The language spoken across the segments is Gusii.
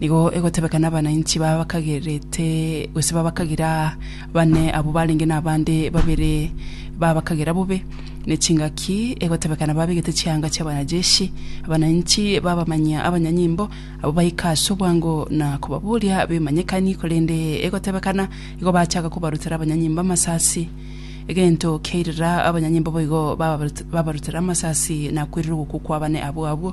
Nigo egotebeka nabananchi baba bakagerete, gose baba bakagera bane abwo barenge nabande babere baba bakagera bobe, ne chingaki egotebeka nababegete chianga chiabanajeshi, abananchi babamanyia abanyanyimbo, abwo baika ase obwango na kobaboria bemanyekani, korende egotebekana igo bachaka kobarutera abanyanyimbo amasasi. Egento kia irira abanyanyimbo boigo babarutera amasasi na kwerire ogokwa kwa bane abwo abwo.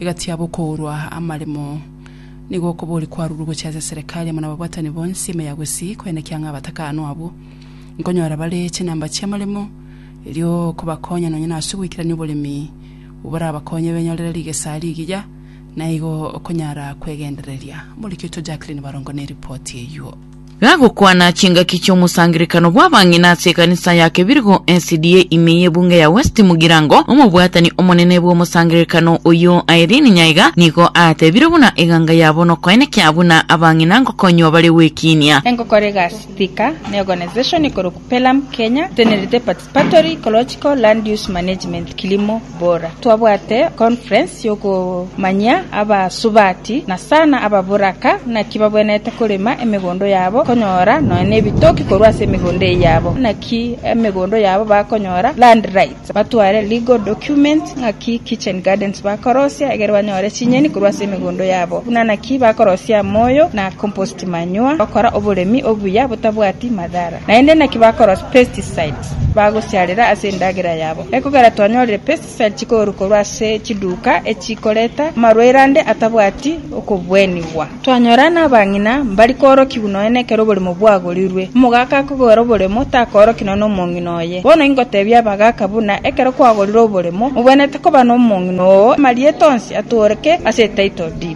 Egati yabo okourwa amaremo, nigo okobori kwarurwe gochia ase eserekari amo nababwatani bonsi ime ya gusii koenekia ng'a abatakano abwo nkonyora bare chinamba chi'amaremo, erio okobakonya nonya nase ogoikerania oboremi borabakonye benyorere rigesa rigiya, naigo okonyara kwegendereria. Morikitwa Jacqueline Barongo neripoti eyio. Gagokwana chingaki chi'omosangererekano bw'abang'ina ase ekanisa ya Kebirigo SDA ime y'ebunge ya West Mugirango, omobwatani omonene bw'omosangererekano oyio Irene Nyaiga nigo aatebire buna eganga ya bono koenekia buna abang'ina ngokonywa bare gwekiinia. Engokora egasi Thika, neorganisation ikorokwa Pelham Kenya, etenerete participation Patori Ecological Land Use Management Kilimo Bora Twabwate conference yokomanyia abasubati na sana ababoraka naki babwenerete korema emegondo yabo konyora nonya nebitoki korwa ase emegondo eye yabo naki emegondo yabo bakonyora land rights batware legal documents ngaki kitchen gardens bakorosia egere banyore chinyeni korwa ase emegondo yabo buna naki bakorosia moyo na compost chimanywa, gokora oboremi obuya botabwati madhara. Naende naki bakorosia pesticides bagosiarera ase endagera yabo. Ekogera twanyorire pesticides chikoorwa korwa ase chiduka echikoreta amarwaire ande atabwati okobwenigwa. Twanyora nabang'ina mbari koorokigwa nonya nekero oboremo bwagorirwe. Omogaka akogora oboremo takooroki nonya nomong'ina oye. Bono ingotebia abagaka buna ekero kwagorire oboremo, mobwenerete koba nomong'ina oo amarieta onsi atooreke ase etitle deed.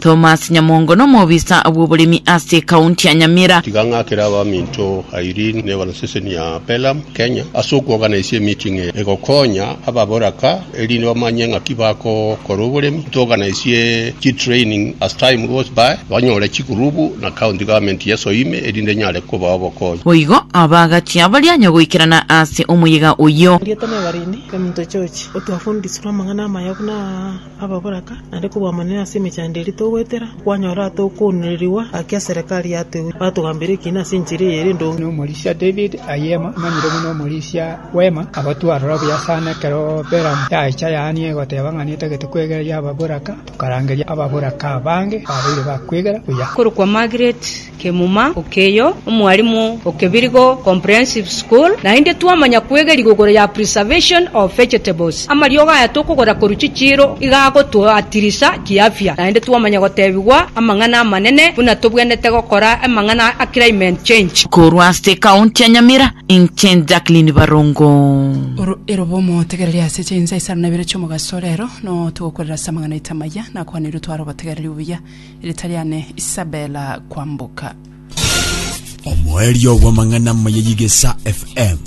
Thomas Nyamongo nomobisa bw'oboremi ase ekaunti ya Nyamira. Tiga ng'akere abaminto Irene ne ebaroseseni ya Pelham, Kenya, ase okwoganaisie emeeting eye egokonya ababoraka erinde bamanye ng'aki bagokora oboremi. Ntoganaisie chitraining as time goes by, banyore chigurubu na county government yeso ime erinde enyare kobaa obokonyi. Boigo abaagakia baria nyagoikerana ase omoyega oyio. Rieta na Ebarine, Emunto George, otwafundisirwe amang'ana amaya buna aya. ababoraka, naende kobwamanire ase emechando eria togoetera, kwanyora atokoonererigwa gaki eserekari yatoewe, batogambera ekiina ase enchera eye ere endonge. Omorisia David Ayema, omanyire buna Omorisia bw'Eema, agotwa aroro buya sana ekero Beramu yacha yaania egoteba ng'a netagete kwegereria ababoraka, tokarangeria ababoraka abange babeire bakwegera buya. Korokwa Margaret Kemuma okeyo, omwalimu o Kebirigo Comprehensive School, naende twamanya kwegeria igoro ya Preservation of Vegetables. Amariogo aya tokogora korwa chichiiro iga agotoatirisa kiafya, naende twamanya gotebigwa amang'ana amanene buna tobwenerete gokora amang'ana a climate change. Korwa ase ekaunti ya Nyamira, inche Jacqueline Barongo. Oro erobo omotegereri ase chinsa isano na ibere chi'omogaso. Rero, no togokorera ase amang'ana aito amaya, nakwanirwe tware obotegereri obuya. Erieta riane Isabella Kwamboka. Omoerio bw'amang'ana amaya y'Igesa FM,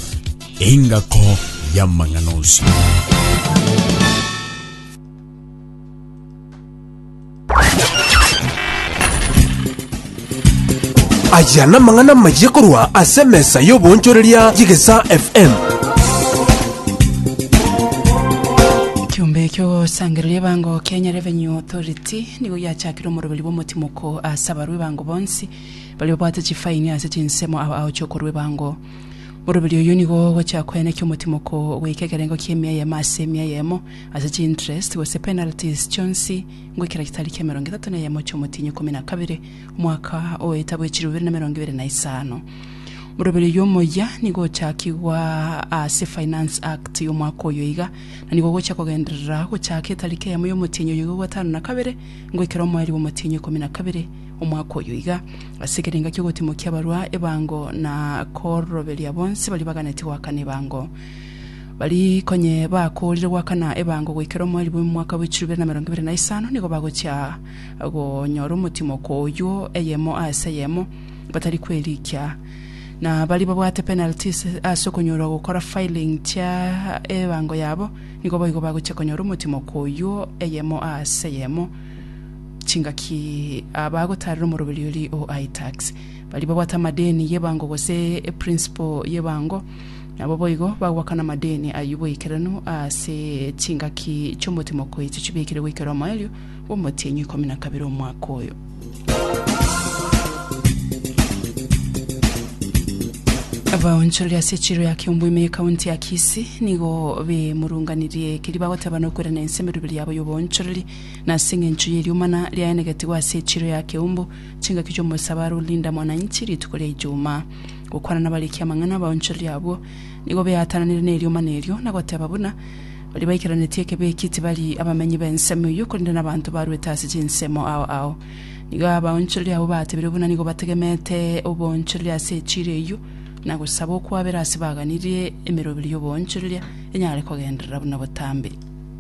engako y'amang'ana onsi. Aya namang'ana amaya korwa ase emesa y'oboonchoreria y'Igesa FM. Kiumbe ekio sangereria bango Kenya Revenue Authority Ati, Nigo giachakire omoroberi bw'omotimoko ase abarwa ebango bonsi, baria babwate chifaini ase chinsemo ao aoche okorwa ebango. Moroberi oyio nigo ogochia koenekia omotimoko goika ekerengo ki'emia eyemo ase emia eyemo ase chiinterest gose penalties chionsi ngwe kera gitari ki'emerongo etato na eyemo chi'omotienyi ikomi na kabere omwaka o etabu echiri bibere na emerongo ebere na isano. Moroberi oyio omoyia nigo ochakigwa ase Finance Act y'omwaka oyo iga, Na nigo gochia kogenderera gochaaka etariki eyemo y'omotienyi oyo iga gatano na kabere, ngoikera omoeri bw'omotienyi ikomi na kabere omwaka oyo iga. Ase ekerenga ki'ogotimokia abarwa ebango na koroberia bonsi baria baganeti goakana ebango, bari konye bakoorire goakana ebango goikera omoeri bw'omwaka bwe chirubere na emerongo ebere na isano, nigo bagochia gonyora omotimoko oyio, eyemo aase eyemo, batari kwerikia. na baria babwate penalties ase okonyorwa gokora filing chia ebango yabo nigo boigo bagochia konyora omotimoko oyio eyemo ase eyemo chingaki ah, bagotarera omoroberiori o iTax. Baria babwate amadeni y'ebango gose eprinciple y'ebango nabo boigo bagoakana amadeni ayio boikeranu ase chingaki chi'omotimoko echi chibekire goikera omoerio bw'omotienyi ikomi na kabere omwaka oyo. Abaonchoreri ase echiro ya Kiomboime y'Ekaunti ya Kisii nigo bemurunganirie ekeri bagoteba nokwerana ense emeroberi yabo y'oboonchoreri na ase eng'encho y'eriomana riaenegetigwe ase echiro ya Keumbu chingaki chi'omosabaro o Linda Mwananchi rituko ria Ijumaa. Gokwana nabariki amang'ana, abaonchoreri abwo nigo beatananire neriomana erio na goteba buna Baria baikaranetie ekebi eki tibari abamenyi b'ensemo eyio, korende nabanto barwete ase chinsemo ao ao. Nigo abaonchoreria abwo batebire buna nigo bategemete oboonchoreria ase echiira eyio, na gosaba okwabera ase baganirie emeroberi y'oboonchoreria enyare kogenderera buna botambe.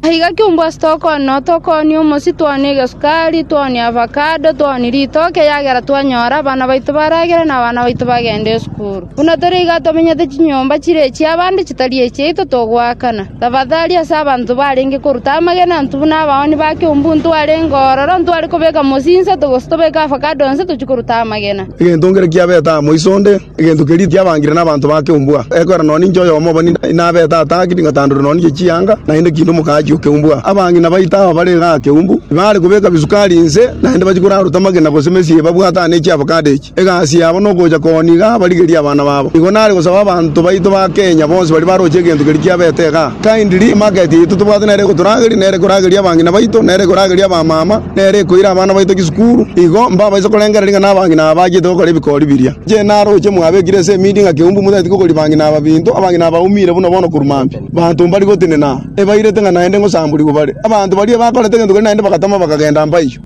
Aiga kiungo ase tokoonwa, tokoonwa omosi, toonwa egesukari, toonwa avacado, toonwa ritoke, eagera twanyora abana baito baragere na abana baito bagende esukuru. Buna tore iga tomenyete chinyomba chire chi'abande chitari echiaito togoakana. Tafadali ase abanto barenge koruta amagena intwe buna abaoni ba keumbu intwe arenge ororo ntware kobeka mosinsato gose tobeke avakado onsi tochie koruta amagena. Egento nkere kiabete amo iso onde, egento keria tiabangire nabanto ba keumbu aa. Ekero nonye ninche oyomo obo nabete ataaki tingatandorire nonye inche chianga, naende kiinde omokaachi o keumbu aa. Abange na baito aba bare igaa keumbu, tibaare kobeka bisukari inse, naende bachia koraruta amagena gose mesii eye babwate aa ne chiavakado echi. Egasi yabo nogocha koniga abarigerie abana babo. Igo nare gosaba abanto baito ba Kenya bonsi baria baroche egento keria kiabete igaa. Kindly emarket yaito tobwate nere egotorageria, nere ekorageria abang'ina baito, nere ekorageria abamama, nere ekoira abana baito chisukuru. Igo mbabaise korengereria ng'a nabang'ina aba bachiete gokora ebikori biria. Inche naroche mwabekire ase emidi ng'a keumbu motageti kokoria bang'ina aba binto, abang'ina aba baumire buna bono korwa mambia. Abanto mbari gotenena, ebairete ng'a naende ngosamborigwe bare. Abanto baria bakorete egento keria naende bagatama bakagenda mpaiyo.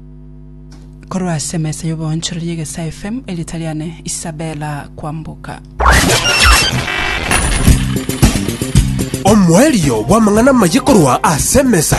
Korwa ase emesa y'oboonchorori y'egesae FM, erieta riane Isabella Kwamboka. Omoerio bw'amang'ana amaye korwa ase emesa